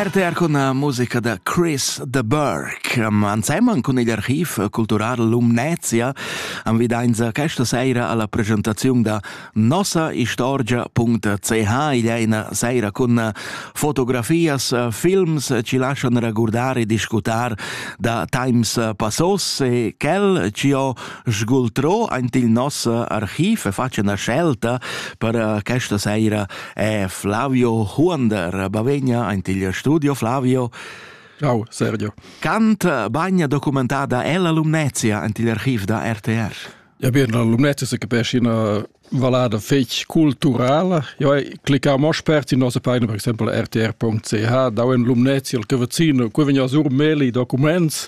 RTR con la musica da Chris de Burke. Anseman cun il archiv cultural Lumnezia am vidainza questa seira alla presentazione da nossaistorgia.ch. Il è una seira con fotografias, films ci lasciano raccordare e discutar da times passos e quel ci ho sgultro aint il nos archiv e faccio una scelta per questa seira è Flavio Huonder bavegna in il studio Flavio. Ciao Sergio. Cant bagna documentada ella Lumnezia in il archiv da RTR. Ja bien, la Lumnezia se capisce una valada fetch culturala. Jo cliccamo spert in nostra pagina per esempio rtr.ch, da in Lumnezia, il cavazino, qui vegna sur meli documents.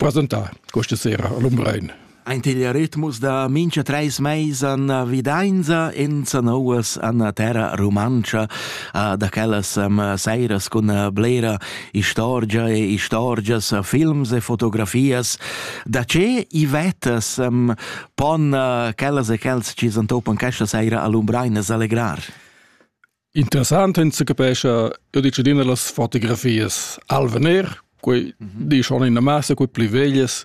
Presentà questa sera a Lumbrein. Aint il ritmus da mincha treis meis an vidainza in sanouas an terra rumantscha da quellas seiras cun blera istorgia e istorgias, films e fotografias. Da che i vettas pon quellas e quels chi s'antopan questa seira a Lumbrein es allegrar? Interessant ins se capescha, io dice adina las fotografias al vener, quei mm -hmm. di schon in massa quei pli veglias.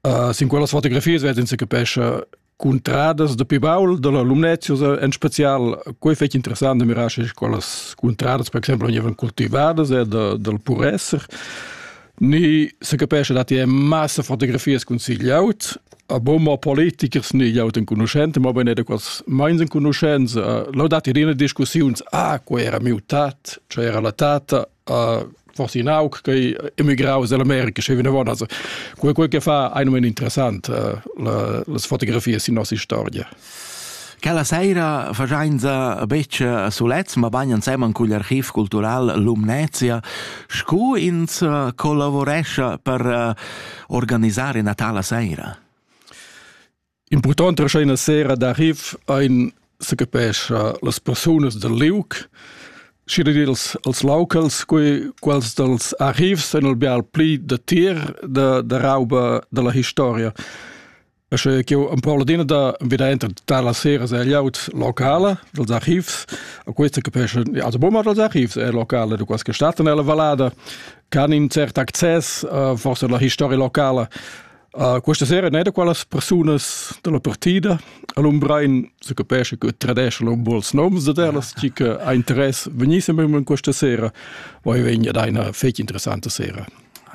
Uh, sin quellas fotografias vet ins se capescha cuntradas da pi baul da la Lumnezius en spezial quei fetg interessant da mirar sche quellas cuntradas per exemplo vegnevan cultivadas eh, da, dal puresser Ni se capesce dat è massa fotografias cun sigliaut, a bomma politikers ni jaut en conoscente, ma bene da quas meins en conoscenza. Lo dat irina discussiuns, ah, qua era mutat, cioè era la tata, uh, forse in aug che emigrau dall'America, scevina von, also quel quel che fa ein men interessant uh, la, las fotografias in nossa storia. Quella saira fagiainza betg sulets, mabain ensemen cugl archiv cultural Lumnezia, scu ins collavurescha per organisar ina tala saira. Important rescha ina sera d'archiv ein se capescha las persunas del liuc, și dils als locals, quei quals dels archivs ein el bial pli de tir de, de rauba de la historia. Sche ch'io empau adina da veder entrar tar las seras e laut locala dels archivs, a questa capisce also bomma dels archivs e locale de qualche stato nella vallada, can in cert access uh, forse la historia locala. Uh, questa sera ne da qualas personas della partida all'Umbrein se capisce che tradesce un buons noms de telas chi che ha interesse venissem in questa sera, poi vegna da una fece interessante sera.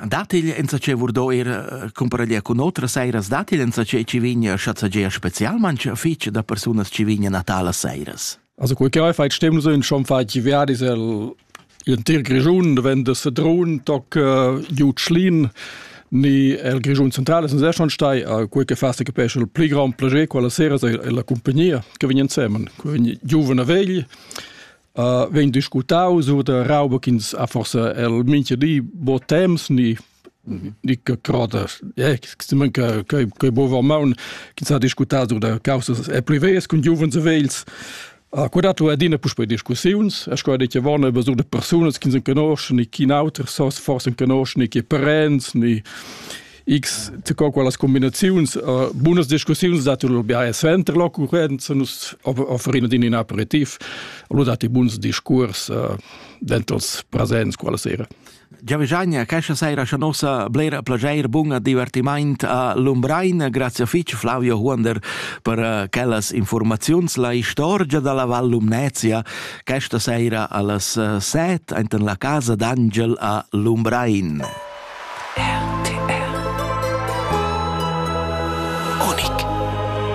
Dat il enzatgei vurdo ir eh, cumparalia cun otras seiras dat il enzatgei ci vigna schazzagea specialmanch fich da persunas ci vigna natala seiras. Also quei che hai fai stem so in schon fai ci verde is el in tir Grischun wenn das Sedrun toc uh, Jutschlin ni el Grischun centrale sind sehr schon stai a quei che fast che pesce il pli grand plagier quella sera è la compagnia che vegn insieme con giovane vegli uh, vegn discutau sur de rauba ch'ins ha forse el mincha di bo temps ni ni che crodas eh stimmen che che bova maun ch'ins ha discutau de causas e privées cun giuvens e vegls Uh, quella tu adina puspei discussiuns, es quella che vanno über so de personas che sind conosci, ni chi in auter sos forse conosci, ni che parents, ni X co quellas combinaziuns uh, bunas discussiuns dati lur biae suenter l'occurrenza nus offerino din in aperitif lo dati buns discurs uh, dentros presents quella sera. Giavigagna, questa sera c'è nostra blera piacere, buon divertimento a Lumbrain. Grazie fitch Flavio Huonder per eh, quellas informazioni. La istorgia della Val Lumnezia questa sera alle 7 eh, enten la casa d'Angel a Lumbrain. RTR Unic